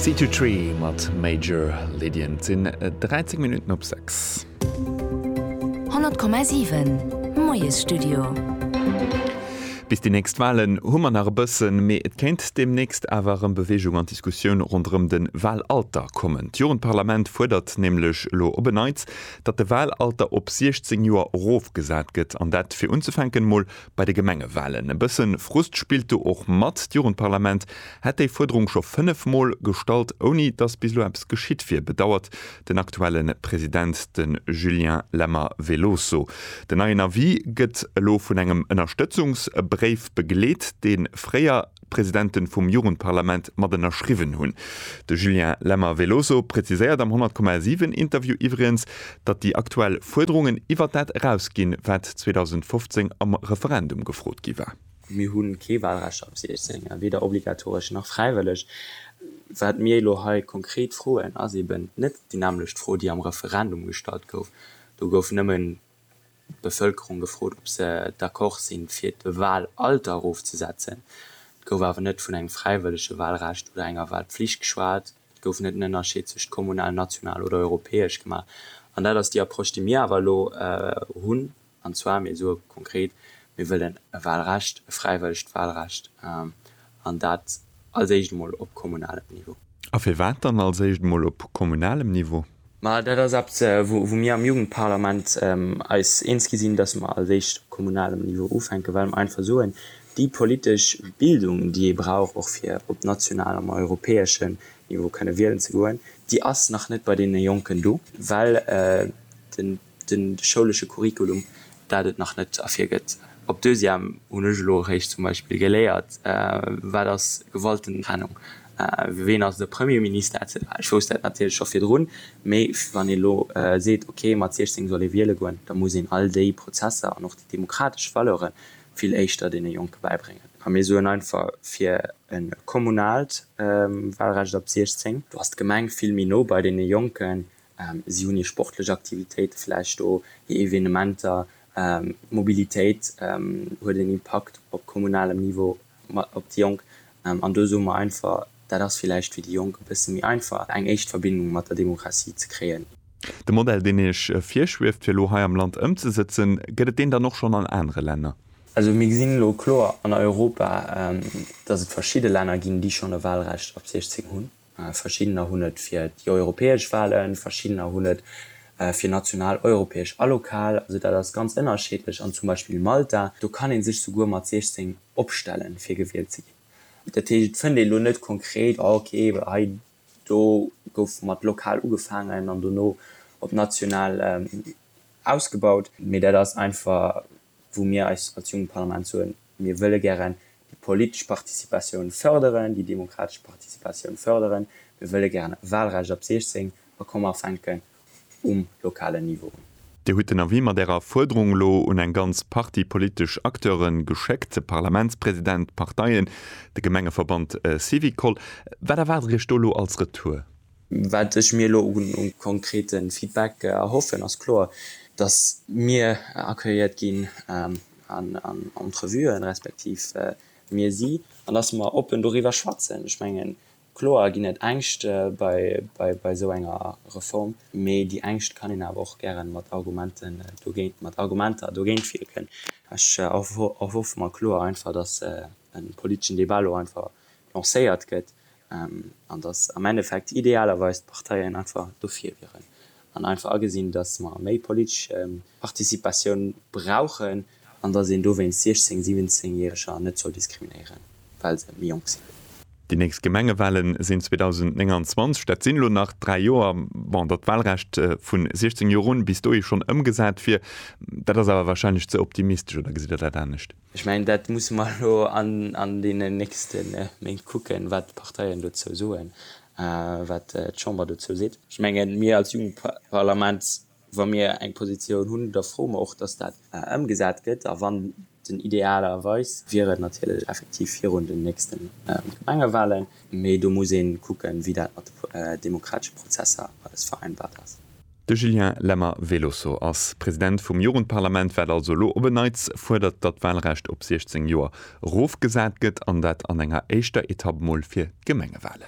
Sea to Tree mat Major Lydian. Et sinn 13 Minutten op 6. 100,7 Moiesstudio. Bis déi nächst Walen hu mer nach e bëssen, mee et kéint deemnächst awer erëm Beweegung an d'Diskussioun ronderëm de Walalter kommen. D'Jugendparlament fuerdert nämlech elo op en Neits, datt de Walalter op 16 Joer erofgesat gëtt, an dat fir unzefänken emol Bei de Gemengewalen, e bësse Frust spillt do och mat. D'Jugendparlament hätt déi Fuerderung scho 5 Mol gestallt, ouni datt bis elo eppes geschitt wier, bedauert den aktuelle President, de Julien Lemmer Veloso. Den neien Avis gëtt elo vun engem Ënnerstëtzungsbréif begleet, dee fréier. Presidenten vum Jugendparlament mat ënnerschriwwen hunn. De Julien Lemmer Veloso präziséiert am 100,7 Interview iwwregens, datt déi aktuell Fuerderungen iwwert dat eraus ginn, wat 2015 am Referendum gefrot gi war. Mir hu kee Wahlrecht ab 16, weder obligatoresch nach fräiwëlleg. Wat mir elo hei konkret froen, ass eeben net déi nämmlecht Fro, déi am Referendum gestallt gouf. Do gouf nëmmen d'Bevëlkerung gefrot, ob se d'accord sinn, fir d'Wahlalter erofzesetzen. Et gouf awer net vun engem fräiwëllege Wahlrecht oder enger Wahlpflicht geschwat. Et gouf net en Ënnerscheed zwëscht kommunal, national oder europäesch gemaach. An dat ass déi Approche, déi mir awer elo hunn. An zwar, mir soe konkret, mir wëllen e Wahlrecht, e fräiwëllegt Wahlrecht. an dat als éischt emol op kommunalem Niveau. A firwat dann als éischt emol op kommunalem Niveau? Ma dat ass eppes, wou mir am Jugendparlament eis eens gi sinn, dass mer als éischt op kommunalem Niveau ufänken, well mer einfach soen, déi politesch Bildung, déi ee brauch, och fir op nationalem a europäeschen Niveau kënne wielen ze goen, déi ass nach net bei deene Jonken do, well den. De schoulesche Curriculum, dat et nach net ervir gëtt. Op Deuxième hunn ech elo eréischt zum Beispill geléiert, wat ass Gewaltentrennung, ween ass de Premier Minister etc. Ech wousst dat natierlech scho virdrun, mee wann ee lo seet, ok, mat 16 soll ee wiele goen, da muss een all déi Prozesser an och déi demokratesch Valeure vill éischter deene Jonke bäibréngen. A mir soen einfach, fir e kommunalt Walrecht ab 16, do ass d'Gemeng vill méi no bei deene Jonken, Si hunn hir sportlech Aktivitéite vläicht do, hir Evenementer. D'Mobilitéit huet en Impakt op kommunalem Niveau op déi Jonk. An do soe mer einfach, dat ass vläicht fir déi Jonk e bësse méi einfach, eng éischt Verbindung mat der Demokratie ze kréien. De Modell, deen Iech virschwieft, fir elo hei am Land ëmzesëtzen, gëtt et deen dann och schonn an anere Länner? Also mir gesinn elo kloer an Europa, datt et verschidde Länner ginn, déi schonn e Wahlrecht ab 16 hunn. Verschiddener hunn et fir déi europäesch Walen, verschiddener hunn et fir national, europäesch a lokal. Also dat ass ganz ënnerscheedlech. An zum Beispill Malta, do kann ee sech souguer mat 16 opstellen, fir gewielt ze ginn. Dat heescht, et fënnt ee lo net konkret, ah okay, hei do gouf mat lokal ugefaangen an dono op national ausgebaut. Mee dat ass einfach wou mir eis als jonkt Parlament soen, mir wëlle gären déi politesch Participatioun fërderen, déi demokratesch Participatioun fërderen, mir wëlle gären e Wahlrecht ab 16 a komme fänken um lokalen Niveau un. Dir hutt den Avis mat Ärer Fuerderung elo un eng ganz Partie politesch Acteure geschéckt, de Parlamentspräsident, d'Parteien, de Gemengeverband Syvicol. Wat erwaart Der Iech do elo als Retour? Wat ech mir elo u konkrete Feedback erhoffen, ass kloer, datt mir accueilliert ginn an Entrevuen, respektiv mir si, an datt mer oppen doriwwer schwätzen. Ech mengen, kloer ginn et Ängscht bei esou enger Reform, mee déi Ängscht kann een awer och gären mat Argumenten, mat Argumenter dogéint wierken. Ech erhoffe mer kloer einfach, datt e politeschen Debat elo einfach lancéiert gëtt, An dass am Endeffekt idealerweis d'Parteien einfach dofir wieren. An einfach agesinn, dass mer méi politesch Participatioun brauchen an dass een dowéinst 16, 17 Järeger net soll diskriminéieren, well se méi jonk sinn. Déi nächst Gemengewale sinn 2029. Dat sinn elo nach dräi Joer. Bon, datt d'Walrecht vu 16 Joer un bis dohi schonn ëmgesat wier, dat ass awer warscheinlech ze optimistesch, oder gesitt Der dat anescht? Ech mengen, dat musse mer elo an deenen nächste Méint kucken, wat d'Parteien dozou soen, wat d'Chamber dozou seet. Ech mengen, mir als Jugendparlament, wa mir eng Positioun hunn, da froe mer och, dass dat ëmgesat gëtt. A wann den, idealerweis wier et natierlech effektiv virun den nächste Gemengewahlen, Mee do muss ee kucken, wéi dat mat de demokratesche Prozesser alles vereinbart ass. De Julien Lemmer, Velosso, ass President vum Jugendparlament, wat also elo op en Neits fuerdert, datt d'Walrecht op 16 Joer erofgesat gëtt, an dat an enger éischter Etapp mol fir d'Gemengewalen.